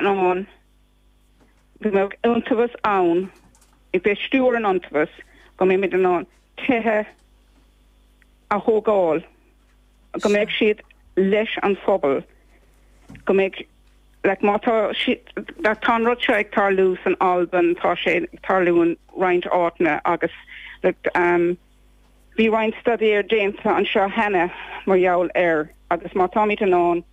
ann go mbeadh iontaobhas ann ag, beidh ag stiúradh an iontaobhais, go mbeimid in ann tithe a thógáil, go mbeidh siad leis an phobal, go mbeidh like má tá siad tá an rud seo ag tarlú san Albain, tá sé ag tarlú in roinnt áiteanna agus like. Bhí roinnt staidéir déanta anseo cheana mar gheall air agus má táimid in ann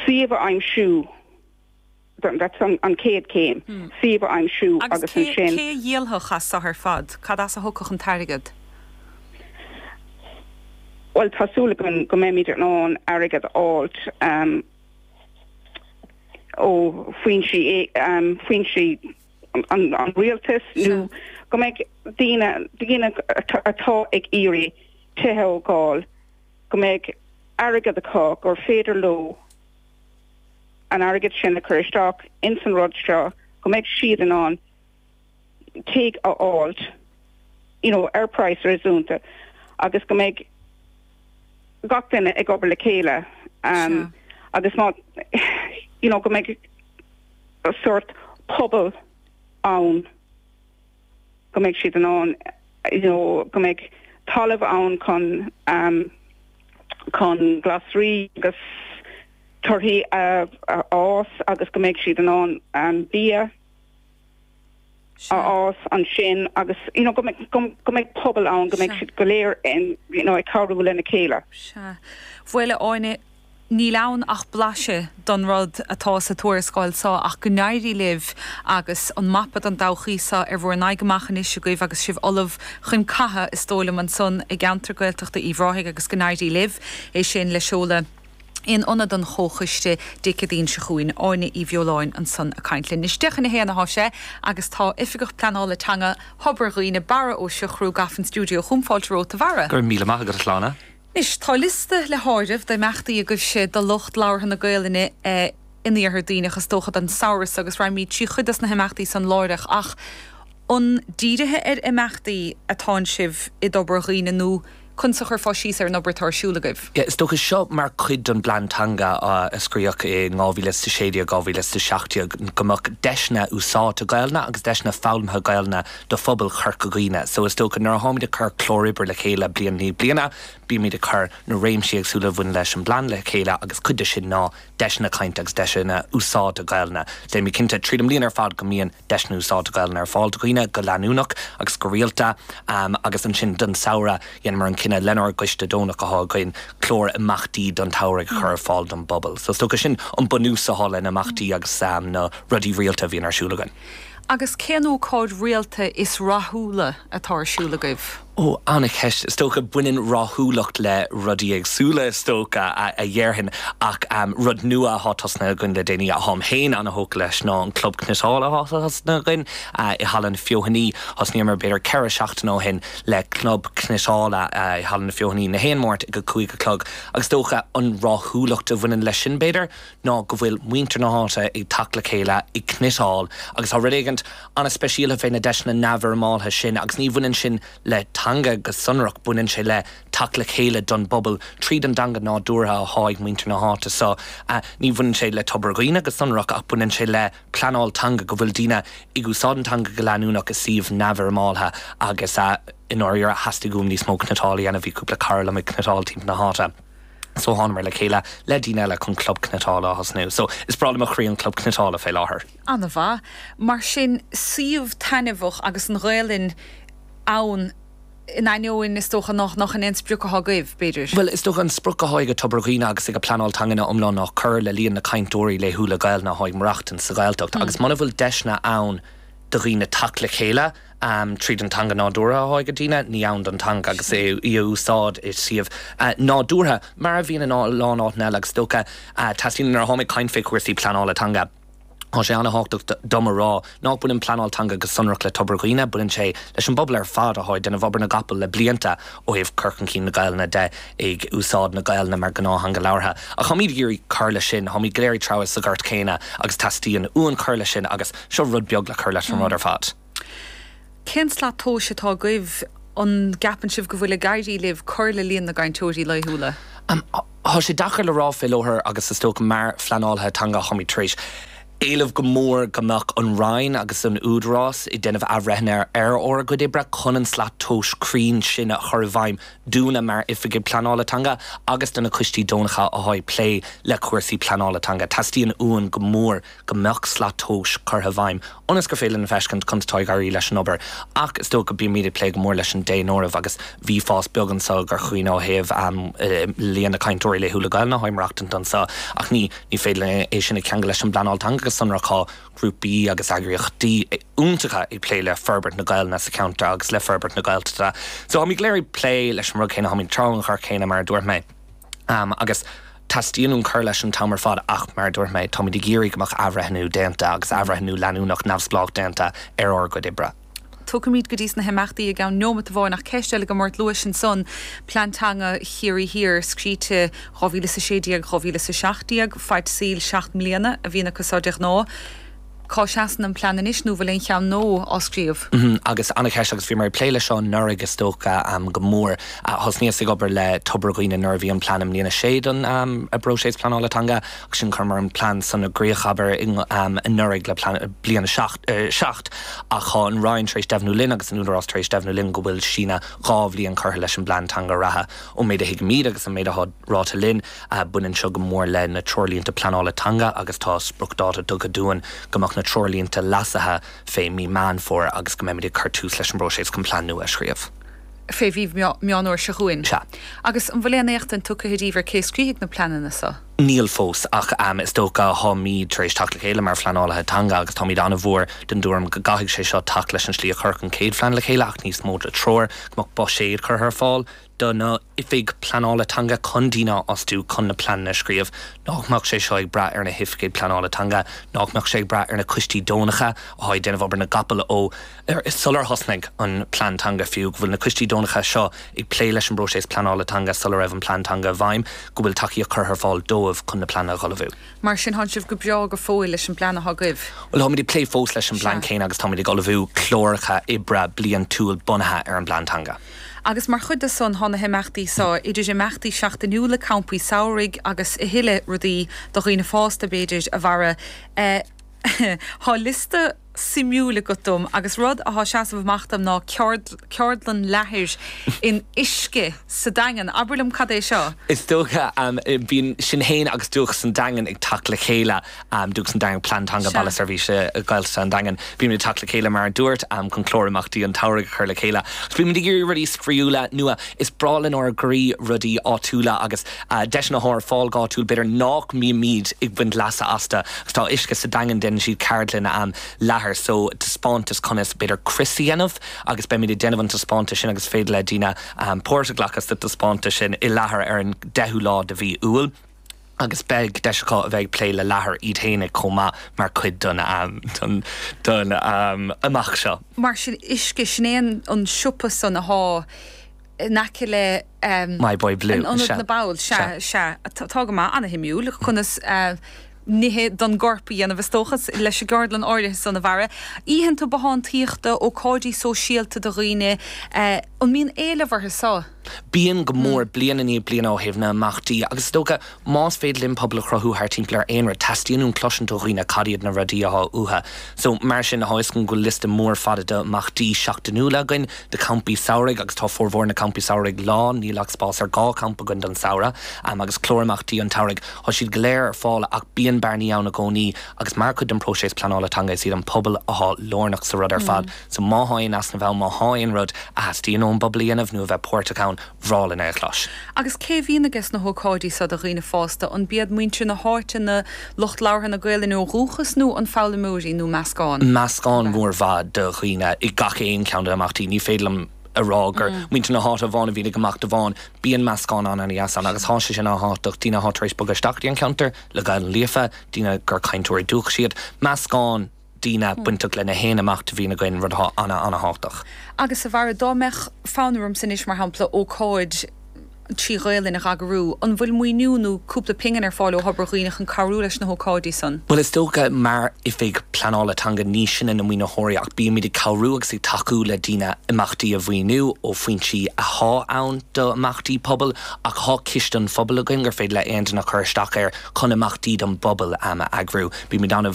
suíomh a aimsiú that's an chéad chéim, suíomh a aimsiú agus ansin. Agus cé a dhíolfadh as seo ar fad? Cad as a thiocfadh an t-airgead? Bhuel, tá súil againn go mbeimid in ann airgead a fháilt ó foinsí an Rialtais nó go mbeidh daoine daoine atá ag iarraidh tithe a thógáil go mbeidh airgead acu gur féidir leo an airgead sin a chur isteach ins an rud seo go mbeidh siad in ann tigh a fháilt you know ar praghas réasúnta agus go mbeidh gach duine ag obair le chéile um, agus má you know go mbeidh sórt pobail ann, go mbeidh siad in ann, you know, go mbeidh talamh ann chun, chun glasraí agus torthaí a fhás agus go mbeidh siad in ann bia, a Sea. fhás ansin agus you know go mbeidh pobal ann go mbeidh Sea. siad go léir in you know ag cabhrú lena chéile. Sea. Bhuel a Áine, níl ann ach blaiseadh don rud atá sa tuarascáil seo ach go n-éirí libh agus an mapa don todhchaí seo ar bhur n-aghaidh amach anois agaibh agus sibh ullamh chun catha is dóigh liom ansan i gceantar Gaeltachta Uíbh Ráthaigh agus go n-éirí libh é sin le seoladh in Ionad an Chomhchoiste Dé Céadaoin seo chugainn. Áine Uí Bheoláin ansan a' caint linn. Anois deich chun a haon athá sé agus tá Oifigeach Pleanála Teanga Thobar Dhuibhne, Barra Ó Siochrú, gafa in stiúideo chugam. Fáilte romhat, a Bharra. Go raibh míle maith agat, a Shláine. Anois, tá liosta le háireamh d'imeachtaí agaibhse do lucht labhartha na Gaelainne in Iarthar Duibhneach, is dócha, don samhradh so agus raghaimid trí chuid dos na himeachtaí san láithreach ach an dírithe ar imeachtaí atánn sibh i dTobar Dhuibhne nó Conas a chuirfeá síos ar an obair atá ar siúl agaibh? Is dócha seo mar chuid den bPlean Teanga a scríodh i dhá mhíle 's a sé déag, dhá mhíle 's a seacht déag, go mbeadh deiseanna úsáidte Gaelainne agus deiseanna foghlamtha Gaelainne do phobal Chorca Dhuibhne. So is dócha nuair a tháimid ag cur clár oibre le chéile bliain i ndiaidh bliana, bímid ag cur na réimsí éagsúla a bhaineann leis an bplean le chéile agus cuid de sin ná deiseanna cainte agus deiseanna úsáidte Gaelainne. Déanaimid cinnte tríd an mbliain ar fad go mbíonn. deiseanna úsáide Gaolainne ar fáil do dhaoine go leanúnach agus go rialta agus ansin don samhradh dheineamar an cinneadh lenár gcoiste deonach atá againn clár imeachtaí don tsamhraidh a chur ar fáil don bpobal. So is dócha sin an bunús atá leis na himeachtaí agus na rudaí rialta a bhíonn ar siúl againn. Agus cén ócáid rialta is rathúla atá ar siúl agaibh? Ó, an-cheist. Is dócha, baineann rathúlacht le rudaí éagsúla, is dócha, a dhéarfainn. Ach rud nua athá tosnaithe againn le déanaí, atáim féin an-thógtha leis, ná an Club Cniotála athá tosnaithe againn i Halla na Feothanaí. Thosnaíomar b'fhéidir ceithre seachtaine ó shin le Club Cniotála i Halla na Feothanaí, 'chaon Máirt ag a cúig a chlog. Agus is dócha, an rathúlacht a bhaineann leis sin, b'fhéidir, ná go bhfuil muintir na háite ag teacht le chéile ag cniotáil agus tá rud éigint an-speisialta fé na deiseanna neamhfhoirmeáltha sin agus ní bhaineann sin le teanga go sonrach, baineann sé le teacht le chéile don bpobal tríd an dteanga nádúrtha athá ag muintir na háite so ní bhaineann sé le Tobar Dhuibhne go sonrach ach baineann sé le pleanáil teanga go bhfuil daoine ag úsáid an teanga go leanúnach i suíomh neamhfhoirmeáltha agus i ndáiríre theastaigh uaim níos mó cniotáil a dhéanamh, bhí cúpla cara liom ag cniotáil timpeall na háite. So thánamar le chéile le daoine eile chun Club Cniotála a thosnú. So is breá le mo chroí an Club Cniotála fé láthair. Ana-mhaith. Mar sin, suíomh taitneamhach agus an Ghaelainn ann in ainneoin is dócha nach nach shin é an sprioc athá agaibh, b'fhéidir? Bhuel, is dócha an sprioc athá ag Tobar Dhuibhne agus ag an Pleanáil Teangan ina iomláine ná cur le líon na cainteoirí laethúla Gaelainne athá ag maireachtaint sa Ghaeltacht agus muna bhfuil deiseanna ann do dhaoine teacht le chéile tríd an teanga nádúrtha athá ag daoine, ní ann don teanga agus í á úsáid i suíomh nádúrtha, mar a bhíodh in a lán áiteanna eile agus is dócha teastaíonn nuair a tháim ag caint fé chúrsaí pleanála teanga. Tá sé an-thábhachtach dom a rá nach baineann pleanáil teanga go sonrach le Tobar Dhuibhne, baineann sé leis an bpobal ar fad atá ag déanamh obair na gcapall le blianta ó thaobh cur chun cinn na Gaelainne de, ag úsáid na Gaelainne mar ghnáth-theanga labhartha. Ach táimíd ag iarraidh cur leis sin, táimíd go léir ag treabhadh sa ghort chéanna agus teastaíonn uainn cur leis sin agus. Seo rud beag le cur leis an rud ar fad. Cén slat tomhais atá agaibh? An gceapann sibh go bhfuil ag éirí libh cur le líon na gcainteoirí laethúla? Tá sé deacair le rá fé láthair agus is dócha mar phleanálaithe teanga táimid tar éis éileamh go mór go mbeadh an Roinn agus an tÚdarás ag déanamh athbhreithnithe ar ár gcuid oibre chun an slat tomhais cruinn sin a chur i bhfeidhm dúinne mar Oifigigh Pleanála Teanga agus do na coistí deonacha atá ag plé le cúrsaí pleanála teanga. Teastaíonn uainn go mór go mbeadh slat tomhais curtha i bhfeidhm ionas gur féidir linn a fheiscint conas atá ag éirí leis an obair ach is dócha go mbímid ag plé go mór leis an daonáireamh agus bhí fás beag anseo i gCorca Dhuibhne ó thaobh líon na cainteoirí laethúla Gaelainne atá ag maireachtaint anseo ach ní féidir linn é sin a cheangal leis an bpleanáil teanga go sonrach. Tá grúpaí agus eagraíochtaí iontacha ag plé le forbairt na Gaelainne sa cheantar agus le forbairt na Gaeltachta so táimid go léir ag plé leis an rud céanna, táimid ag treabhadh an ghort chéanna mar a dúirt mé. Am agus. Teastaíonn uainn cur leis an t-am ar fad ach, mar a dúirt mé, táimid ag iarraidh go mbeadh athbhreithniú déanta agus athbhreithniú leanúnach neamhspleách déanta ar ár gcuid oibre. Tiocfaimid go dtí sna himeachtaí i gceann neomat amháin ach ceist eile agam ort, luais ansan, Plean Teanga Chiarraí Thiar, scríte 2016, 2017, faid saoil seacht mbliana a bhíonn acu seo de ghnáth. cá seasann an plean anois nó an bhfuil aon cheann nua á scríobh? Agus an-cheist agus bhí mé ag plé leis seo anuraidh is dócha go mór. Thosnaíos ag obair le Tobar Dhuibhne nuair a bhí an plean i mbliain a sé don bpróiseas pleanála teanga agus ansin chuireamar an plean san i gcrích abair anuraidh le bliain a seacht ach tá an Roinn tar éis deimhniú linn agus an Údarás tar éis deimhniú linn go bhfuil síneadh dhá bhliain curtha leis an bplean teanga reatha. Ón méid a thuigimid agus an méid atá ráite linn, Baineann seo go mór le na Treoirlínte Pleanála Teanga agus tá spriocdháta tugtha dúinn go mbeadh na treoirlínte leasaithe fé mhí Meán Fómhair agus go mbeimid ag cur tús leis an bpróiseas chun plean nua a scríobh. fé mhí Meán Fhómhair seo chugainn. Sea. Agus an bhfuil aon éachtaint tugtha díbh ar cé a scríobfaidh na pleananna so? Níl fós, ach is dócha táimid tar éis teacht le chéile mar phleanálaithe teanga agus táimid an-mhór den dtuairim go gcaithfidh sé seo teacht leis an slí a cuireadh an chéad phlean le chéile ach níos mó de treoir, go mbeadh buiséad curtha ar fáil. do na Oifigigh Pleanála Teanga chun daoine a fhostú chun na pleananna a scríobh, nach mbeadh sé seo ag brath ar na hOifigigh Pleanála Teanga, nach mbeadh sé ag brath ar na coistí deonacha athá ag déanamh obair na gcapall ó sular thosnaigh an Plean Teanga fiú, go bhfuil na coistí deonacha seo ag plé leis an bpróiseas pleanála teanga sula raibh an Plean Teanga i bhfeidhm, go bhfuil tacaíocht curtha ar fáil dóibh chun na pleananna a dh'ullmhú. Mar sin, thánn sibh go breá go fóill leis an bplean athá agaibh? Bhuel, táimid ag plé fós leis an bplean Sea. céanna agus táimid ag ullmhú cláracha oibre bliantúil bunaithe ar an bPlean Teanga. agus mar chuid de san tá na himeachtaí so, idir imeachtaí seachtainiúla, campaí samhraidh agus a thuilleadh rudaí do dhaoine fásta, b'fhéidir, a Bharra. Tá liosta suimiúil agat dom agus rud atá ag seasamh amach dom ná ceardlann leathair in uisce sa Daingean. Abair liom cad é seo? Is dócha. Bíonn sinn féin agus Dúchas an Daingin ag teacht le chéile. Dúchas an Daingin Plean Teanga Baile Seirbhíse Gaeltachta an Daingin. Bímid ag teacht le chéile mar a dúirt, chun clár imeachtaí an tsamhraidh a chur le chéile agus bímid ag iarraidh rudaí spraíúla, nua. Is breá lenár gcroí rudaí áitiúla agus deiseanna atá ar fáil go háitiúil, b'fhéidir nach mbímid ag baint leasa astu agus tá uisce sa Daingean, déanann siad ceardlanna leathair so taispeántas conas b'fhéidir crios a dhéanamh agus beimid ag déanamh an taispeántais sin agus is féidir le daoine páirt a ghlacadh sa taispeántas sin i leathar ar an 10ú lá de mhí Iúil. agus beidh deis acu a bheith ag plé le leathar iad fhéinig chomh maith mar chuid den imeacht seo. Mar sin uisce, sin é an siopa san athá in aice le My Boy Blue, an ionad na mball, sea, sea, tá go maith, ana-shuimiúil, conas nithe don gcorp a dhéanamh is dócha, leis an gceardlann áirithe san a Bharra. Oícheanta bothántaíochta, ócáidí sóisialta do dhaoine. An mbíonn éileamh orthu seo? Bíonn, go mór, bliain i ndiaidh bliana ó thaobh na n-imeachtaí agus is dócha, más féidir linn pobal a chruthú thart timpeall ar aon rud, teastaíonn uainn cloisint ó dhaoine cad iad na rudaí atá uathu. So, mar sin, thá a fhios agat go bhfuil liosta mór fada d'imeachtaí seachtainiúla againn, de champaí samhraidh agus tá formhór na campaí samhraidh lán, níl ach spás ar dhá champa againn don samhradh, em agus clár imeachtaí an tsamhraidh, thá siad go léir ar fáil ach bíonn bearnaí ann i gcónaí agus mar chuid den próiseas pleanála teanga is iad an pobal athá lárnach sa rud ar fad. So má thá aon easnamh ann, má thá aon rud a theastaíonn ón bpobal a dhéanamh nó a bheith páirteach ann, bhreá linn é a chlois. Agus cé a bhíonn aiges na hócáidí seo do dhaoine fásta, an b'iad muintir na háite, na, lucht labhartha na Gaelainne ó dhúchas nó an foghlaimeoirí nó meascán? Meascán mór mhaith de dhaoine i gach aon cheann de na himeachtaí. Ní féidir liom a rá gur muintir na háite amháin a bhíonn ag imeacht amháin. Bíonn meascán an-an-dheas ann agus tá sé sin an-tábhachtach, daoine atá tar éis bogadh isteach go dtí an ceantar le Gaelainn líofa, daoine gur cainteoirí dúchais iad, meascán. daoine bainteach lena haon imeacht a bhíonn againn, rud atá an-an-thábhachtach. Agus abair, dá mbeadh fonn ormsa anois, mar shampla, ócáid trí Ghaelainn a dh'eagrú, an bhfuil maoiniú nó cúpla pingin ar fáil ó Thobar Dhuibhne chun cabhrú leis na hócáidí san? Bhuel, is dócha, mar Oifig Pleanála Teanga, ní sinne na maoinitheoirí ach bímid ag cabhrú agus ag tacú le daoine imeachtaí a mhaoiniú ó fhoinsí athá ann d'imeachtaí pobail ach thá Ciste an Phobail againn gur féidir le aon duine cur isteach air chun imeachtaí don bpobal a eagrú. Bímid ann a.